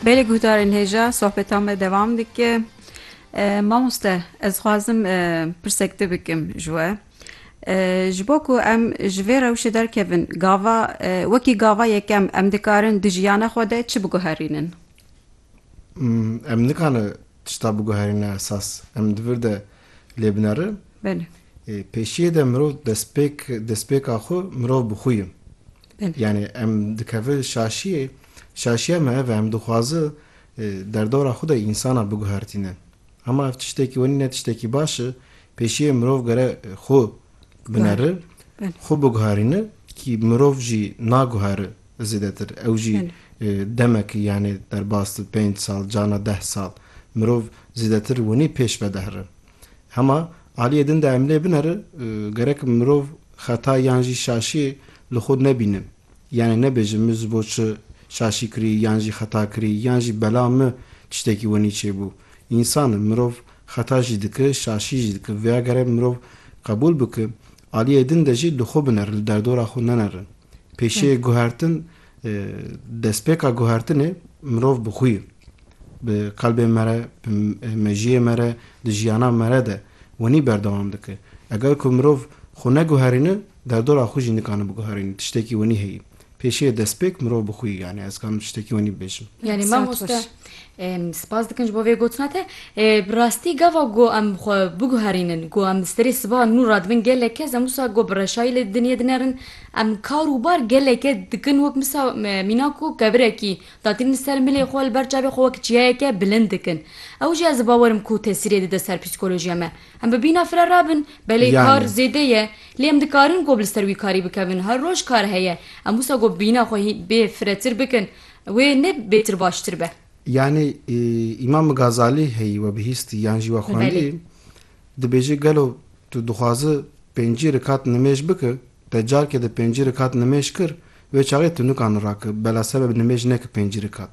Belê guhdarên hêja sohbeta me devam dike. Mamoste ez xwazim pirsek te bikim ji we. Ji bo ku em ji vê rewşê derkevin gava wekî gava yekem em dikarin di jiyana xwe de çi biguherînin? Em nikane tişta biguherîne esas, em di vir de lê binerin. Belê. Pêşiyê de mirov destpêk destpêka xwe mirov bi xwe ye. Belê. Yanî em dikeve şaşiyê, şaşiya me ev e em dixwaze derdora xwe de însana biguhertîne. Hema ev tiştekî wenî ne tiştekî baş e, pêşiyê mirov gere xwe binere, xwe biguherîne kî mirov jî naguhere Zêdetir. Ew jî demekî yanê derbas di pênc sal cana deh sal mirov zêdetir winî pêş ve dihri. Hema aliyê din de em lê bineri gerek mirov xeta yan jî şaşî li xwe nebîne. Yanê nebêje min ji bo çi şaşî kirî yan jî xeta kirî yan jî bela min tiştekî winî çêbû. Însan in mirov xeta jî dike şaşî jî dike. Vêya gerek mirov qebûl bike aliyê din de jî li xwe bineri li derdora xwe neneri. Pêşê guhertin destpêka guhertinê mirov bi xwî bi qelbê me re bi mejiyê me re di jiyana me re de wenî berdewam dike. Eger ku mirov xwe neguherîne derdora xwe jî nikane biguherîne tiştekî wenî heye. Pêşê destpêk mirov bi xwî yanî ez dikarim tiştekî wenî bibêjim. Yanî mamoste Spas dikim ji bo vê gotina te. Bi rastî gava ku em xwe biguherînin ku em serê sibahan nû radibin gelek kes em wisa ku bi reşayî li dinyê dinerin em kar û bar geleke dikin wek misa mîna ku kevirekî datîn li ser milê xwe li ber çavê xwe wek çiyayeke bilind dikin ew jî ez bawer im ku tesîrê dide ser psîkolojiya me. Em bi bîna fire rabin belê kar zêde ye lê em dikarin ku bi li ser wî karî bikevin her roj kar heye em wisa ku bîna xwe bê firetir bikin Wê ne bêtir baştir be. Yanî Îmam Gazalî heyî we bihîstî yan jî we xwendî dibêje gelo tu dixwazi pêncî rikat nimêj biki te carke di pêncî rikat nimêj kir wê çaxê tu nikani raki bela sebe bi nimêj neki pêncî rikat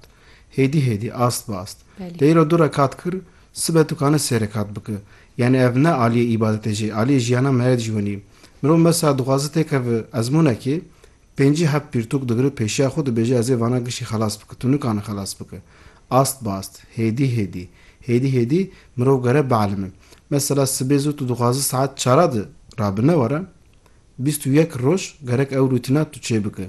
hêdî hêdî ast bi ast te îro du rekat kir sibe tu kani sê rekat biki yanî ev ne aliyê îbadetê jê aliyê jiyana me ye dijwenî mirov mesa dixwazi têkevi ezmûnekê Pêncî heb pirtûk digre pêşiya xwe dibêje ez ê vana gişî xelas bike, tu nikane xelas bike. Ast bi ast, hêdî hêdî, hêdî hêdî mirov gere bielime. Mesela sibê zû tu dixwaze saet çara de rabine were, bîst û yek roj gerek ew rûtîna tu çêbike.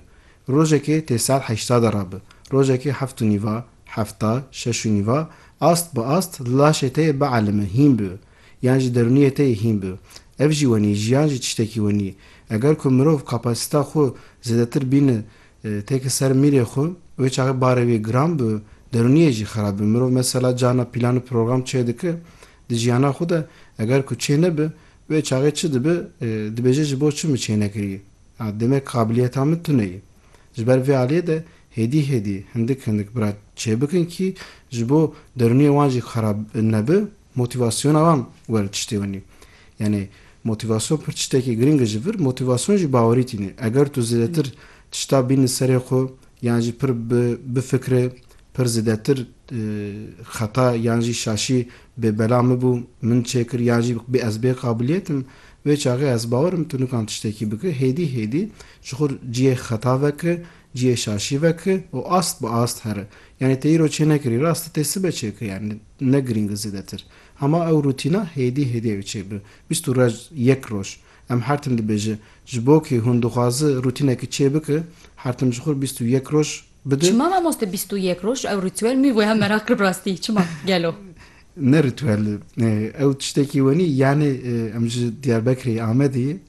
Rojekê tê saet heşta de rabe, rojekê heft û nîva, hefta, şeş û nîva, ast bi ast li laşê te yê bielime, hîn bibe. Yan ji derûniyê te yê hîn bi. Ev jî wenî, jiyan jî tiştekî wenî. Eger ku mirov kapasîta xwe zêdetir bîne têke ser mîrê xwe, wê çaxê barê wê giran bi, derûniyê jî xerab bi. Mirov mesela carna pîlan û program çê dike di jiyana xwe de, eger ku çê nebe, wê çaxê çi dibe, dibêje ji bo çi min çê nekiriye? A, demek qabiliyeta min tune ye. Ji ber vê aliyê de hêdî hêdî, hindik hindik bira çê bikin kî ji bo derûniyê wan jî xerab nebe, Motîvasyona wan were tiştê winî. Yanî motîvasyon pir tiştekî girîng e ji vir. Motîvasyon jî bawerî tîne. Eger tu zêdetir tişta bînî serê xwe yan jî pir bifikre, pir zêdetir xeta yan jî şaşî bê bela min bû, min çêkir yan jî bê ez bê qabiliyet im, wê çaxê ez bawer im tu nikan tiştekî bikî, hêdî hêdî ji xwe ciyê xeta vekiri, ciyê şaşî vekiri û ast bi ast here. Yanî te îro çênekirî rast e tê sibe çêkir. Ne girîng e zêdetir. Hema ew rûtîna hêdî hêdî ew çê bi. Bîst û rec yek roj. Em hertim dibêje. Ji bo kî hûn dixwazi rûtînekî çê biki, hertim ji xwe re bîst û yek roj bidi. Çima mamoste bîst û yek roj? Ew rîtwel mî wêha meraq kir bi rastî? Çima? Gelo? Ne rîtwel e. Ew tiştekî wenî. Yanî em ji Diyarbekirê Amedê